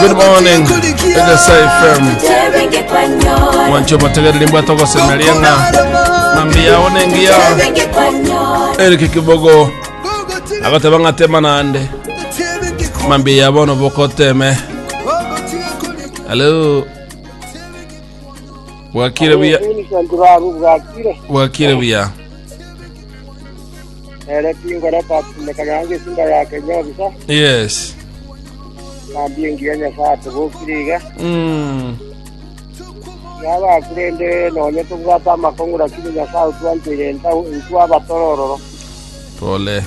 Good morning, Egesa FM. Mwancho motegereri mbwata ogosemeria ng'a mambi yao nengiya erike kibogo agoteba ng'a tema nande mambi ya bono bokoteme halo bwakire buya Vincent Babu bwakire bwakire buya ere kingore tatindekana nange esinda yake nyobisa Yes. kandi engiya nyasaye atobokire iga Mm. yaba kurende nonye tobwate amakong'u lakini nyasaye otwanchire entau intwe abatorororo Pole.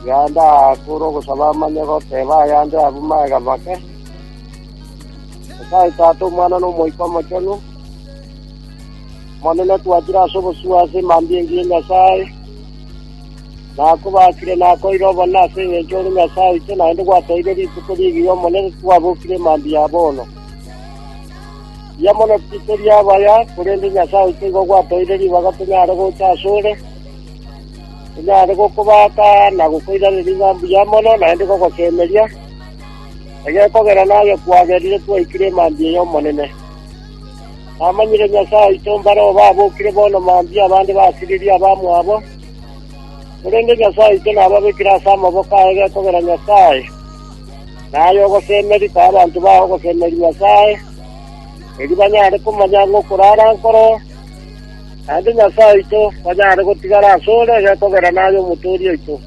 yanda akura ogosaba amanye goteba ayande abuma egabake nyasaye tata omwana nomoika omochenu Omonene, twachire ase obosio ase emambia engiya ya Nyasae, na akobaakire na akoire obonene ase engencho ore Nyasae oito, naende gwatoeire rituko rigiya Omonene twabokire emambia ya bono. Mbuya mono titiri abaya, korende Nyasae oito igo gwatoeire ribaga tonyare gocha ase ore, tonyare gokobaaka na gokoiraneria ng'a mbuya mono naende gogosemeria, egekogera naye kwagerire twaikire emambia y'Omonene. Namanyire Nyasae oito mbare oo babokire bono mambia abande basiririe abamwabo, korende Nyasae oito nababekire ase amaboko aye gekogera Nyasae, na aye ogosemeria koa abanto baye ogosemeria Nyasae, erio banyare komanya ng'a okoro ara nkoro, naende Nyasae oito kwanyare gotigara ase ore gekogera naye Omotooria oito.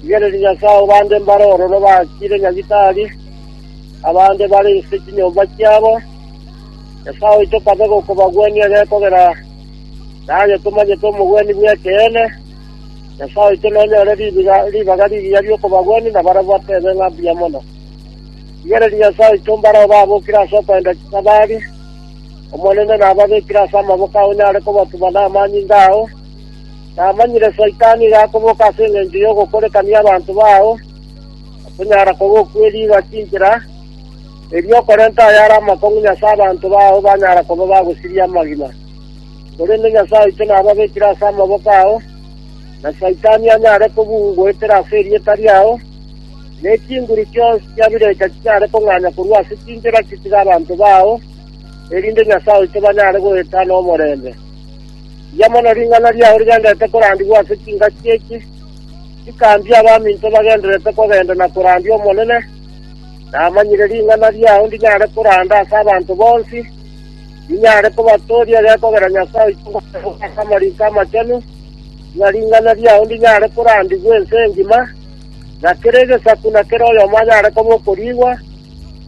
Rigereria Nyasae obande mbare ororo bakire nyagitari, Abande bare inse chinyomba chiabo, Nyasae oito kabe gokobagwenia gekogera, na onye tomanyete omogwenia bw'ekeene, Nyasae oito nonyore ribaga rigiya ri'okobagwenia na barabwo atebe ng'a mbuya mono. Rigereria Nyasae oito mbare obabokire ase okoenda chisabari, Omonene nababekire ase amaboko ao onyare kobatuma namanyinga ao. Namanyire Saitani iga akoboka ase engencho y'ogokorekania abanto bao, Okonyara kogokweriga chinchera, erio okorente ayare amakong'u nyase abanto bao banyara koba bagosiria amagima. Korende Nyasae oito nababekire ase amaboko ao, na Saitani anyare kobugoetera ase erieta riao, ne chinguru chionsi chia birecha chinyare kong'anya korwa ase chinchera chitiga abanto bao, erinde Nyasae oito banyare goeta nomorembe. Rigiya mono ring'ana riao rigenderete korandigwa ase chingaki eki. Nkaambia abaminto bagendererete kogenda na korandia Omonene, namanyire ring'ana riao ndinyare koranda ase abanto bonsi, ninyare kobatooria gekogera Nyasae oito ogoteeba ase Amariko Amachenu, ng'a ring'ana riao ndinyare korandigwa ense engima, na kera egesaku na kera oyomo anyare koba okoriigwa,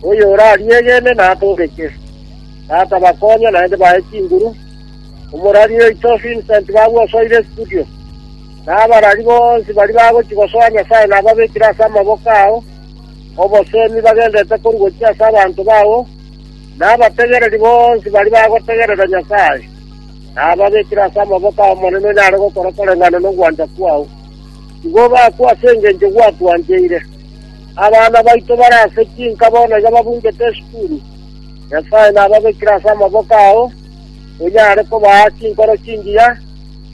oyorariegene natooreke. Tata bakonye, naende bae chinguru. Omorwari oito Vincent babwosoire studio. Na abarari bonsi baria bagochia gosoa Nyasae nababekire ase amaboko ao, obosemi bagenderete korwa gochia ase abanto bao, na abategereri bonsi baria bagotegerera Nyasae, nababekire ase amaboko ay'Omonene onyare gokora koreng'ana nogwancha kwao. Igo bakwe ase engencho gwatwancheire. Abana baito bare ase chinka bono iga babuchete esukuru, Nyasae nababekire ase amaboko ao, onyare kobaa chinkoro chingiya,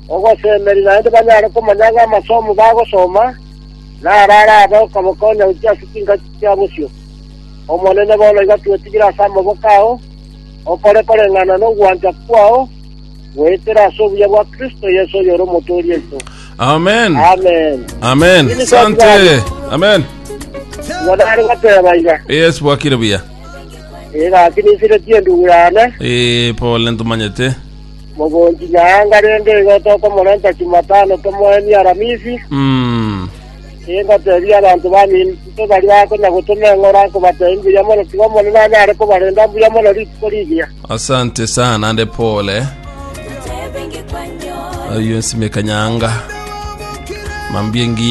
Ogosemeria naende banyare komanya ng'a amasomo bagosoma naro arabe okobakonya gochia ase chingaki chia bosio. Omonene, bono igo twetigire ase amaboko ao, okore koreng'ana nogwancha kwao, goetera ase obuya bwa Kristo Yeso oyore Omotooria oito. Amen. Amen. Amen. Nini Sante. twatwara? Amen. Igo nare goteba iga, Yes, bwakire buya. egaki ninsiretie endugu yane, Eh, pole ntomanyete. Mogonchi Nyaanga rende igo tokomorenta Chumatano tomoenie Aramisi, ingoteebia abanto baminto baria bakonya gotoma eng'ora nkobateebia mbuya mono tiga Omonene anyare kobarenda mbuya mono rituko rigiya. Asante sana nande pole. Ayo nsimeka nyanga. Mambie ngi